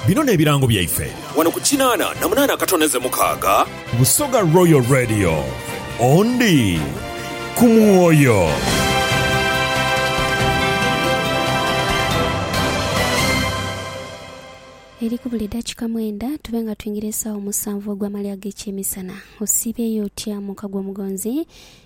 Bino n'ebirango byaife. Wano ku kinaana na munaana akatoneze mukaaga. Busoga Royal Radio, ondi ku mwoyo. Eri ku buli dakika mwenda tube nga twingira esaawa omusanvu ogw'amalya ag'ekyemisana. Osiibyeyo otya muka gw'Omugonzi?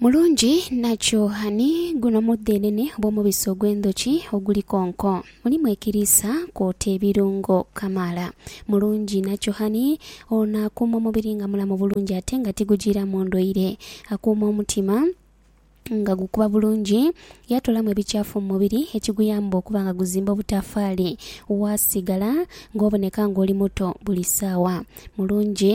Mulungi nakyo ani guno mudhenene obw'omubisi ogw'endhoki oguli konko? Mulimu ekiriisa kwota ebirungo kamaala. Mulungi nakyo ani ono akuuma omubiri nga mulamu bulungi ate nga tigujiiramu ndwaire? Akuuma omutima nga gukuba bulungi, yaatoolamu ebikyafu mu mubiri ekiguyamba okuba nga guzimba obutafaali, waasigala ng'oboneka ng'oli muto buli saawa. Mulungi.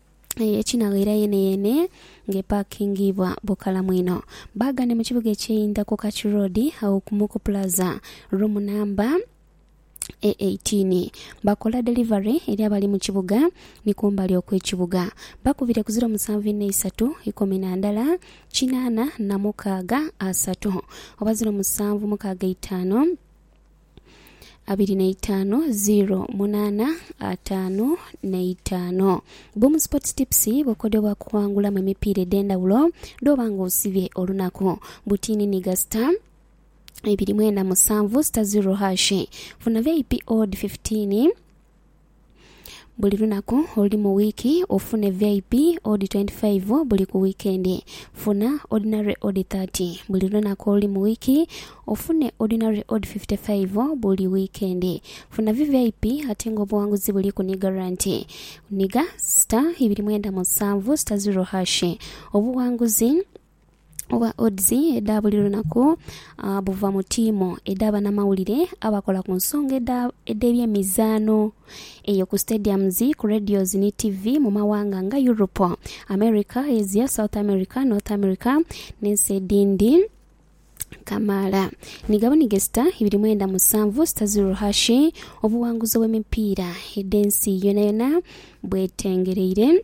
ekinaghaira yeeneyeene ng'epaakingibwa bukalamu inho. Baaga ni mu kibuga ekyeyinda ku Kachu Road agho ku Muku Plaza, roomu namba e eighteen. Bakola delivery eri abali mu kibuga ni kumbali okw'ekibuga. Bakubire ku ziro musanvu inha isatu ikumi na ndala kinaana na mukaaga asatu oba ziro musanvu mukaaga eitaanu. abiri na itaanu ziro munaana ataanu na itaanu. Boom Sports Tips bukodyo bwa kuwangulamu emipiira edh'endhawulo dh'oba nga osibye olunaku. Butiini ni gasita ibiri mwenda musanvu sita ziro hashi. Funa vip odd fifitiini. Buli lunaku oluli mu wiiki ofune VIP odi 25 buli ku wiikendi. Funa Ordinary odi 30 buli lunaku oluli mu wiiki ofune Ordinary odi 55 buli wiikendi. Funa VVIP ate nga obuwanguzi buli ku ni garanti. Niga star ibiri mwenda musanvu star zero hash obuwanguzi oba odds edha buli lunaku buva mu tiimu edha banamawulire abakola ku nsonga edh'ebyemizaano eyo ku stadiums, ku radios ni tivi mu mawanga nga Europe, America, Asia, South America, North America n'ensi edhindi kamaala. Ni gabonige sita ibiri mwenda musanvu sita ziro hashi obuwanguzi obw'emipiira edh'ensi yonayona bwetengereire.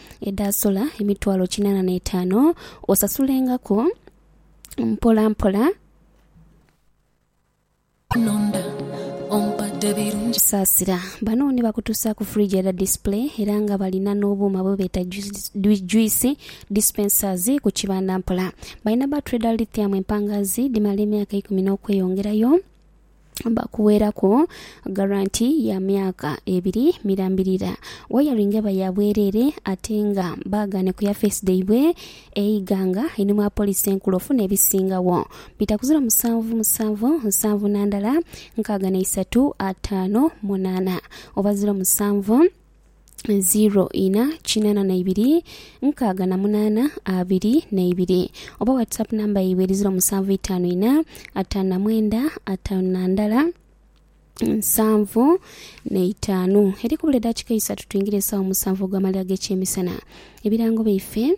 edhaasola emitwalo kinaana n'etaano, osasulengaku mpolampola. Saasira bano ni bakutuusaaku fridge edha display era nga balina n'obuuma bwe beeta juice dispensers ku kibanda mpola. Balina battery dha lithium empangaazi dhimala emyaka eikumi n'okweyongerayo. bakuweraku garanti ya myaka ebiri mirambirira. Wayaringa eba ya bwerere ate nga baagane ku ya feesi dhaibwe eighanga einhuma wa poliisi enkulu ofuna ebisingagho bita kuziro musanvu musanvu nsanvu na ndala nkaaga na isatu ataanu munaana oba ziro musanvu 0 ina kinana na ibiri nkaaga na munana abiri na ibiri oba whatsapp namba yaibwe eri 0 musanvu itaanu ina ataanu na mwenda ataanu na ndala nsanvu neitaanu eri kubula edakika isatu twingire esawa musanvu ogwamaliro agekyemisana ebirango byaife